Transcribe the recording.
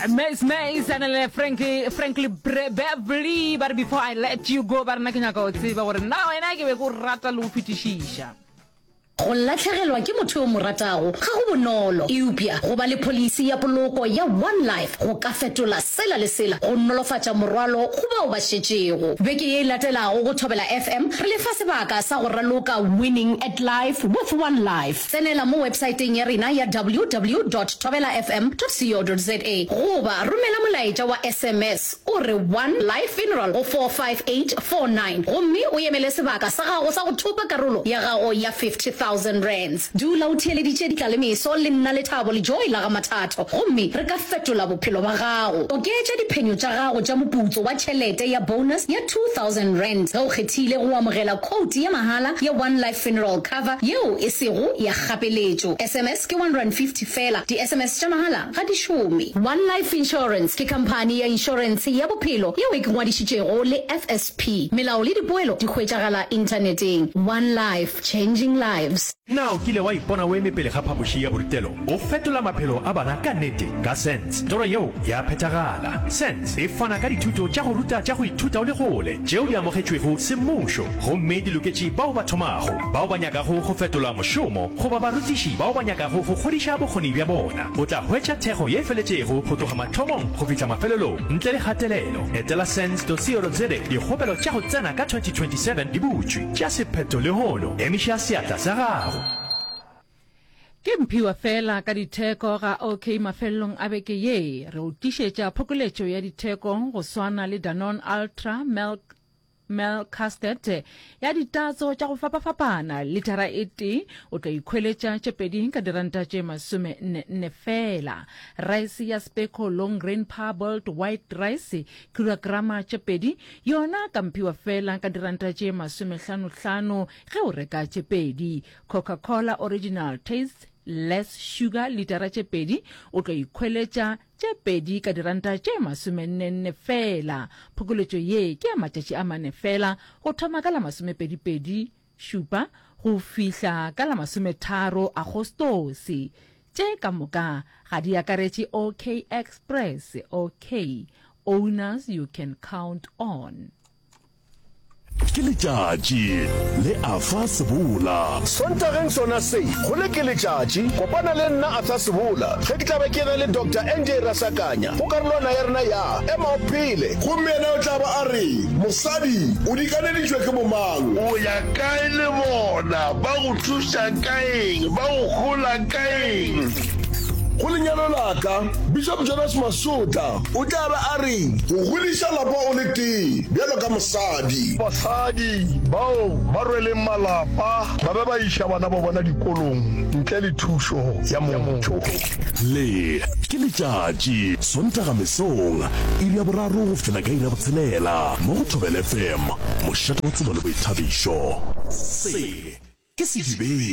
Mace Mace a na le Frankie Frankly Bre- Beverly ba re before I let you go ba rena ke nyaka o tseba gore na wena ke be ko rata le go fetišiša Go latlhegelwa ke motho yo o mo ratago ga go bonolo, eupša go ba le pholisi ya poloko ya One Life go ka fetola sela le sela go nolofatša morwalo go bao ba šetšego. Beke ye e latelago go Thobela FM re le fa sebaka sa go raloka Winning at Life with One Life. Tsenela mo websaeteng ya rena ya ww dot thobelafm dot co dot za goba romela molaetša wa sms o re One Life Funeral go 45849 gomme o emele sebaka sa gago sa go thopa karolo ya gago ya R50,000. Dula o theeleditše ditlalemeso le nna Lethabo le Joy la ga Mathatho gomme re ka fetola bophelo ba gago. Oketša diphenyo tša gago tša moputso wa tšhelete ya bonus ya R2,000 ge o kgethile go amogela khoutu ya mahala ya One Life Funeral. Cover yeo e sego ya kgapeletšo. SMS ke R150 feela. Di-SMS tša mahala ga di šome. One Life Insurance ke khamphani ya inšorentshe ya bophelo yeo e ke ngwadišitšego le FSP. Melao le dipoelo di hwetšagala Inthaneteng. One Life, changing lives. Na o kile wa ipona o eme pele ga phapoši ya borutelo go fetola maphelo a bana ka nnete? Ka SENS, toro yeo ya phethagala. SENS e fana ka dithuto tša go ruta tša go ithuta o le kgole tšeo di amogetšwego semmušo. Gomme di loketše bao ba thomago, bao ba nyakago go fetola mošomo, goba barutiši bao ba nyakago go kgodiša bokgoni bja bona. O tla hwetša thekgo ye feletšego go tloga mathomong go fihla mafelelong, ntle le kgatelelo. Etela sens.co.za Dikgopelo tša go tsena ka 2027 di butšwe. Tšea sephetho lehono. Emiša seatla sa gago. Ke Mphiwa fela ka ditheko ga OK Mafelelong a beke ye, re o tlišetša phokoletšo ya ditheko go swana le Danone Ultra, Milk, Mel Castet ya ditatso tša go fapafapana litara e tee o tlo ikhweletša tše pedi ka diranta tše masome nne nne fela rice ya speco long grain parboiled white rice kilograma tše pedi yona ka mphiwa fela ka diranta tše masome hlano hlano ge o reka tše pedi coca cola original taste less sugar litara tše pedi o tlo ikhweletša tše pedi ka diranta tše masomennenne feela. Phokoletšo ye ke ya matšatši a mane feela, go thoma ka la masomepedipedi, šupa, go fihla ka la masometharo Agostose. Tše ka moka ga di akaretše OK Express, OK, Owners you can count on. ke letšatši le a fa sebola sontageng sona se go le ke letšatši kopana le nna a fa sebola ge ke tlabe ke na le dr nj rasakanya go karolwana ya rena ya ema o phele gomme yena o tla ba a re mosadi o dikaneditšwe ke bomang o ya kae le bona ba go thuša ka eng ba go hola ka eng go lenyalo la ka bishop jonas masota O tla ba a reng? Go godiša lapa o le tee bjalo ka mosadi. Basadi bao ba rweleng malapa ba be ba iša bana ba bona dikolong ntle le thušo ya motho. Le, ke letšatši, Sontaga mesong, iri ya boraro go fihla ka iri ya botshelela, mo go Thobela FM, mošate wa tsebo le boithabišo. Se, ke sedibeng.